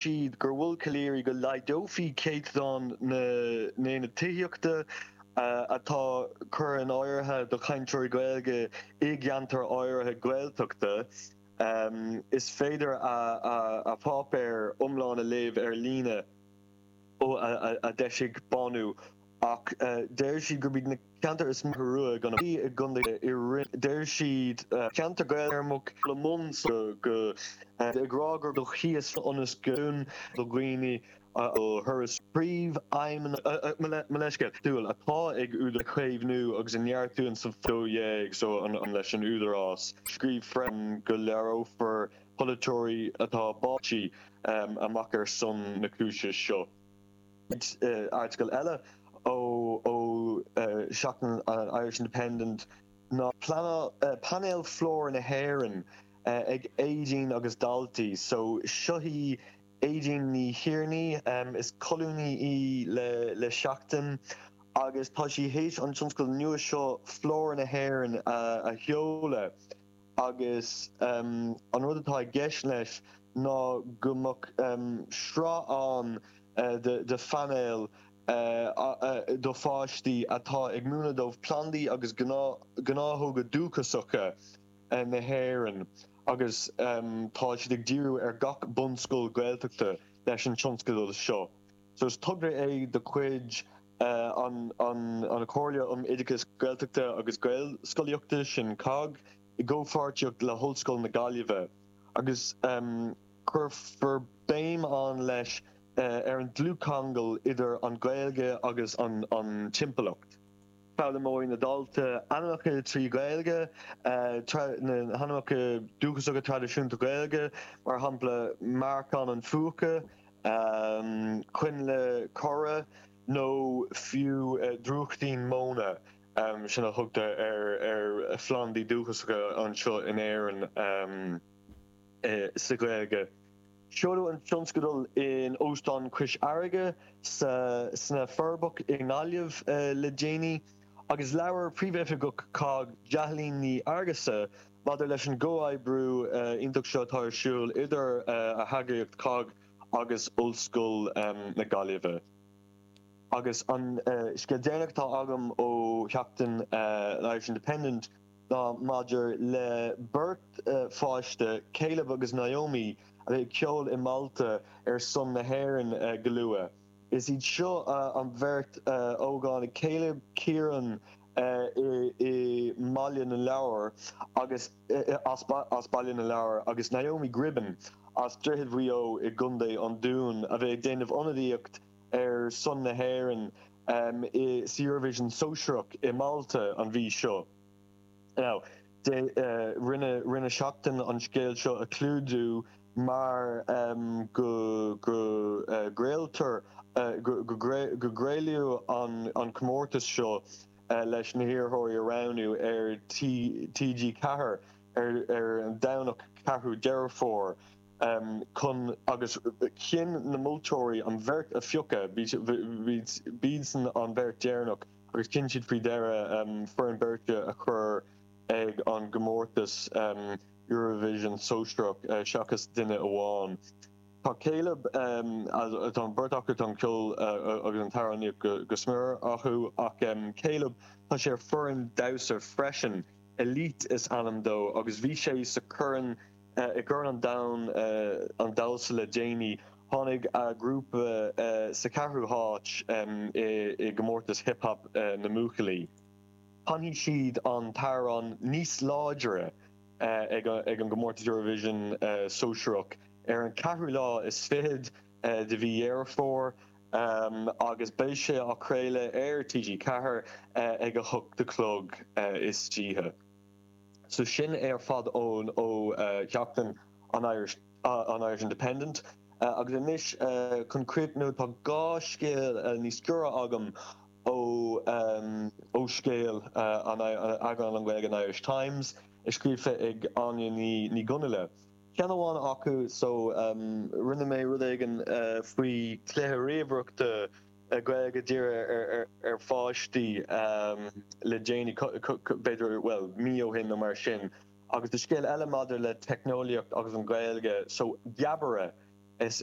siad gur mhol Calleary go laghdófaí céatadán na n-aonad tithíochta atá curtha in áirithe do chainteoirí Gaeilge i gceantair áirithe Gaeltachta. Is féidir a pháipéar iomlán a léamh ar líne a d'eisigh Bánú ó. ach deir siad gurb iad na ceantair is mó rua gan a bheith i gcontae i roinn deir siad ceantair Gaeilge-Éireammacha le Monzo go ag rá gur do chíos ionas go dún do dhaoine a thuras príomhfheidhmeanna mo leithscéal dúil atá ag údar caomhnú agus a neartú an sa 12 so an an leis an Údarás scríobh freisin go léireofar polaiteoirí atá báite amach ar son na cúise seo. Airteagal eile ó sheachtain an Irish Independent ná painéil Flóra na hÉireann ag Aedín agus daltaí. So seo í Aedín Ní Thiarnaigh, is colúnaí í le Seachtain agus tá sí théis an tionscadal nua seo Flóra na hÉireann a sheoladh. agus an rud atá i gceist leis ná go mbeadh sraith ann de phainéil do pháistí atá ag múineadh dóibh plandaí agus gnáthóga dúchasacha na hÉireann agus tá siad ag díriú ar gach bunscoil Ghaeltachta leis an tionscadal seo. so is togra é de chuid. an Chomhairle um Oideachas Gaeltachta agus Gaelscolaíochta, sin cogg, i gcomhpháirtíocht le hOllscoil na Gaillimhe, agus cuirfear béim ann leis ar an dlúthcheangal idir an Ghaeilge agus an timpeallacht. Foghlaimeoidh na daltaí ainmneacha trí Ghaeilge, na hainmneacha dúchasacha traidisiúnta Gaeilge, mar shampla, Méaracán an Phúca. coinnle corra nó fiú drúchtín móna sin a thugtar ar phlandaí dúchasacha anseo in Éirinn sa Ghaeilge. Seoladh an tionscadal in Óstán Cois Fharraige sna Forbacha i nGaillimh le déanaí agus labhair Príomhoifigeach cogg Jacqueline Ní Fhearghusa Maidir leis an gcomhoibriú iontach seo atá ar siúl idir a heagraíocht cogg agus Ollscoil na Gaillimhe, agus an scéal deireanach atá agam ó sheachtain an Irish Independent ná maidir le beirt pháiste, Caleb agus Naomi, a bheidh ag ceol i Malta ar son na hÉireann go luath. Is iad seo an bheirt ógánaigh, Caleb Kieran, i mBaile na Lobhar, as Baile na Lobhar, agus Naomi Gribben as Droichead Mhaigh Eo i gContae an Dúin, a bheidh ag déanamh ionadaíocht ar son na hÉireann sa Eurovision Sóisearach i Málta an mhí seo. Rinne Seachtain an scéal seo a chlúdú mar go gcraoltar, go gcraoladh an comórtas seo leis na hiarrthóirí a roghnú ar TG Ceathair ar an Domhnach 4ú Deireadh Fómhair chun agus chinn na moltóirí an bheirt a phiocadh, b'iadsan an bheirt deireanach. agus chinn siad faoi dheireadh foireann beirte a chur ag an gcomórtas Eurovision sóisearach seachas duine amháin. Tá Caleb, tá an bheirt acu, tá an ceol agus an t-amhránaíocht go smior acu, ach Caleb, tá sé ar foireann damhsa freisin, Elite is ainm dó, agus bhí sé sa Chorn I gCorn an Domhain an Damhsa le déanaí, tháinig a ghrúpa sa cheathrú háit i gcomórtas Hip Hop na mBuachaillí. Canfaidh siad an t-amhrán Níos Láidre ag an gcomórtas Eurovision Sóisearach ar an cheathrú lá is fichead de mhí Dheireadh Fómhair agus beidh sé á chraoladh ar TG4 ag a hocht a chlog istoíche. So sin é ar fad ón ó Sheachtain an Irish an Irish Independent agus anois chun críochnú tá dhá scéal níos giorra agam ó ó Scéal an eagrán an Gaeilge an Irish Times i scríofa ag Áine Ní Ní Dhonnaile. Ceann amháin acu so rinne mé rud éigin faoi chluiche ríomhaireachta Gaeilge dírithe ar pháistí le déanaí, b'fhéidir, bhuel, mí ó shin nó mar sin, agus do scéal eile maidir le teicneolaíocht agus an Ghaeilge, so, Geabaire, is.